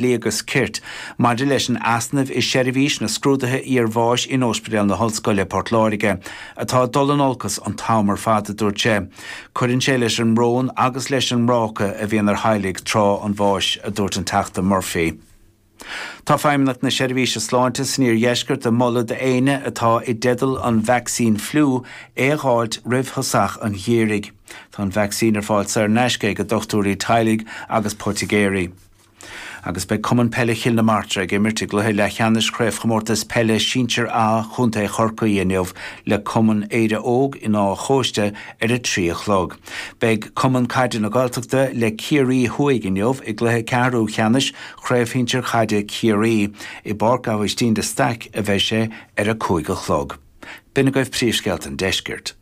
Dlí agus Cirt maidir leis an easnamh i seirbhís na scrúduithe iar-bháis in Óispidéal na hOllscoile, Port Láirge, atá ag dul in olcas an t-am ar fad, a dúirt sé. Cuireann sé leis an mbrón agus leis an mbráca a bhíonn ar theaghlaigh tráth an bháis, a dúirt an Teachta Murphy. Tá Feidhmeannacht na Seirbhíse Sláinte san Iardheisceart ag moladh d'éinne atá i dteideal an vacsaín fliú é a dh'fháilt roimh thosach an gheimhridh. Tá an vacsaín ar fáil saor in aisce ag dochtúirí teaghlaigh agus poitigéirí. Agus beidh Cumann Peile Chill na Martra ag imirt i gcluiche leathcheannais Chraobhchomórtas Peile Sinsear A Chontae Chorcaí inniu le Cumann Éire Óg in Áth an Chóiste ar a trí a chlog. Beidh Cumann Caide na Gaeltachta le Ciarraí Thuaidh inniu i gcluiche ceathrúcheannais Chraobh Shinsear Chaide Chiarraí. I bPáirc Abhaistín de Staic a bheidh sé ar a cúig a chlog. B'in agaibh príomhscéalta an deiscirt.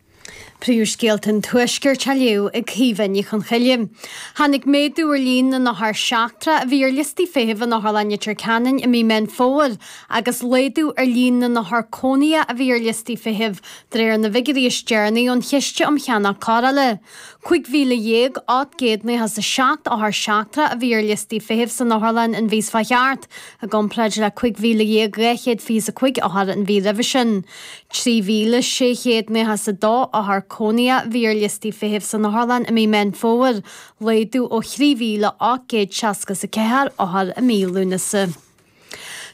Príomhscéalta an Tuaiscirt á léamh ag Caoimhe Ní Chonchoille. Tháinig méadú ar líon na n-othar seachtrach a bhí ar liostaí feithimh in Otharlann Leitir Ceanainn i mí Meán Fómhair agus laghdú ar líon na n-othar cónaithe a bhí ar liostaí feithimh de réir na bhfigiúirí is deireanaí ón Chiste um Cheannach Cóireála. 15,897 othar seachtrach a bhí ar liostaí feithimh san otharlann an mhí seo chuaigh thart, I gcomparáid le 15,225 othar an mhí roimhe sin, 3,692 othar cónaithe a bhí ar liostaí feithimh san otharlann i mí Mheán Fómhair, laghdú ó 3,864 othar i mí Lúnasa.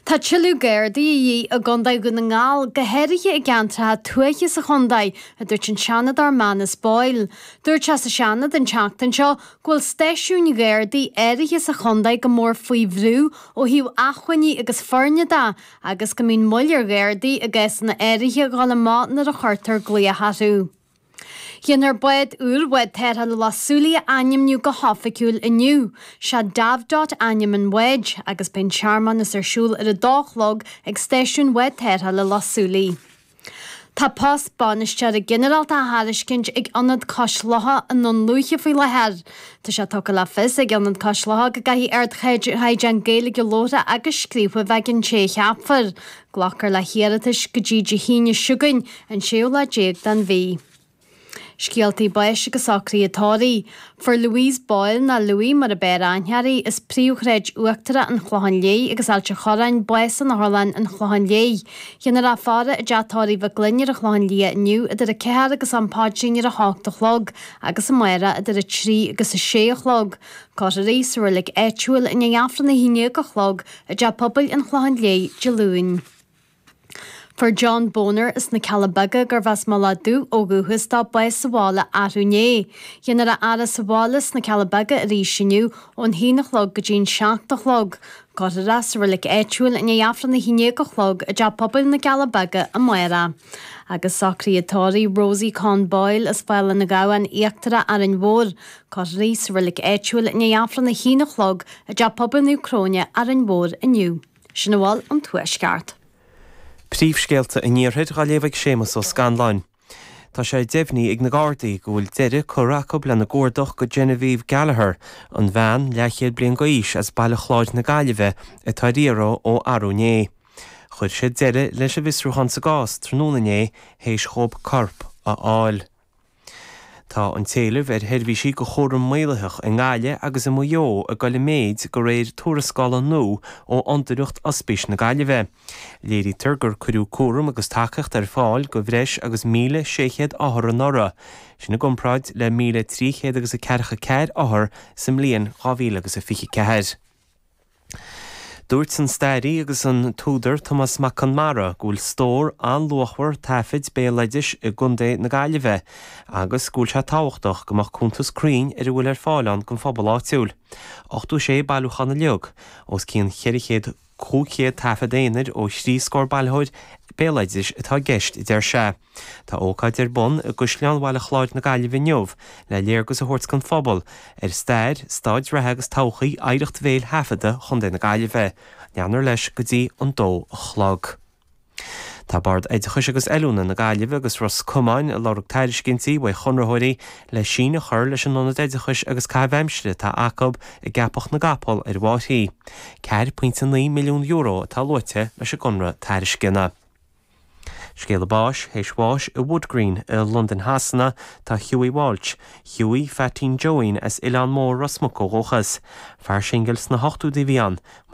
Tá tuilleadh Gardaí de dhíth i gContae Dhún na nGall, go háirithe i gceantracha tuaithe sa chontae, a dúirt an Seanadóir Manus Boyle. Dúirt sé sa Seanad an tseachtain seo go bhfuil stáisiúin Ghardaí áirithe sa chontae go mór faoi bhrú ó thaobh acmhainní agus foirne de agus go mbíonn moill ar Ghardaí i gcásanna áirithe a dhul amach nuair a chuirtear glaoch orthu. Dhéanfar bád úr Bhád Tarrthála Loch Súilí a ainmniú go hoifigiúil inniu. Is é Davdot ainm an bháid agus beidh an searmanas ar siúl ar a dó a chlog ag Stáisiún Bhád Tarrthála Loch Súilí. Tá post Bainisteora Ginearálta á thairiscint ag Ionad Cois Locha i nDún Lúiche faoi láthair. Tá sé tugtha le fios ag Ionad Cois Locha go gcaithfidh ardchaighdeán Gaeilge labhartha agus scríofa a bheith ag an té a cheapfar. Glacfar le hiarratais go dtí Dé hAoine seo chugainn, an séú lá déag den mhí. Scéaltaí báis agus socruithe tórraimh. Fuair Louise Boyle, nó Louie mar ab fhearr aithne uirthi, as Príomhshráid Uachtarach an Chlocháin Léith agus Ailt a' Chorráin, bás in Otharlann an Chlocháin Léith. Dhéanfar í a fhaire i dTeach Tórraimh Mhig Fhloinn ar an Chlochán Liath inniu idir a ceathair agus an paidrín ar a hocht a chlog agus amárach idir a trí agus a sé a chlog. Cuirfear í sa roilig áitiúil i ndiaidh Aifreann a haon dhéag a chlog i dTeach Pobail an Chlocháin Léith, Dé Luain. Fuair John Boner as na Cealla Beaga gurbh as Mullach Dubh ó dhúchas dó, bás sa bhaile arú inné. Déanfar é a fhaire sa bhaile sna Cealla Beaga arís inniu, ón haon a chlog go dtí an seacht a chlog. Cuirfear é sa reilig áitiúil i ndiaidh Aifreann a haon déag a chlog i dTeach Pobail na gCealla Beaga amárach. Agus socruithe tórraimh Rosie Conn Boyle as Fál an Ghabhann Íochtarach, Árainn Mhór. Cuirfear í sa reilig áitiúil i ndiaidh Aifreann a haon a chlog i dTeach Pobail Naomh Cróine, Árainn Mhór inniu. Sin a bhfuil ón Tuaisceart. Príomhscéalta an Iarthair á léamh ag Séamus Ó Scanláin. Tá sé deimhnithe ag na Gardaí go bhfuil deireadh curtha acu lena gcuardach do Genevieve Gallagher, an bhean, leathchéad bliain d'aois, as Baile Chláir na Gaillimhe atá ar iarraidh ó arú inné. Chuir siad deireadh leis an bhfiosrúchán sa gcás tráthnóna inné théis dhóibh corp a fháil. Tá an t-éileamh ar sheirbhísí do chúram maolaitheach i nGaillimh agus i Maigh Eo ag dul i méid de réir tuarascála nua ó Fhondúireacht Ospís na Gaillimhe. Léirítear gur cuireadh cúram agus tacaíocht ar fáil do bhreis agus 1,600 othar anuraidh, sin i gcomparáid le míle trí chéad agus a ceathracha ceathair othar sa mbliain dhá mhíle agus a fiche ceathair. Dúirt an stairí agus an t-údar Tomás Mac Conmara go bhfuil stór an-luachmhar taifid béaloidis i gContae na Gaillimhe agus go bhfuil sé tábhachtach go mbeadh cuntas cruinn ar a bhfuil ar fáil ann don phobal áitiúil. 86 bailiúchán uilig, os cionn 400, 500 taifead aonair ó thrí scór bailitheoir béaloidis atá i gceist, a deir sé. Tá ócáid ar bun i gCaisleán Bhaile Chláir na Gaillimhe inniu le léargas a thabhairt don phobal ar stair, stáid reatha agus todhchaí oidhreacht bhéil thaifeadta Chontae na Gaillimhe. Leanfar leis go dtí an dó a chlog. Tá Bord Oideachais agus Oiliúna na Gaillimhe agus Ros Comáin ag lorg tairiscintí uaidh chonraitheoirí le síneadh a chur leis an ionad oideachais agus caitheamh aimsire atá acu i gCeapach na gCapall ar an bhFairche. €4.9 milliún atá luaite leis an gconradh tairisceana. Scéala báis théis bháis i Wood Green i Londain Shasana tá Hughie Walsh, Hughie Pheaitín Joeín as Oileán Mór Ros Muc ó dhúchas. Fear singil sna hochtóidí a bhí ann, mar.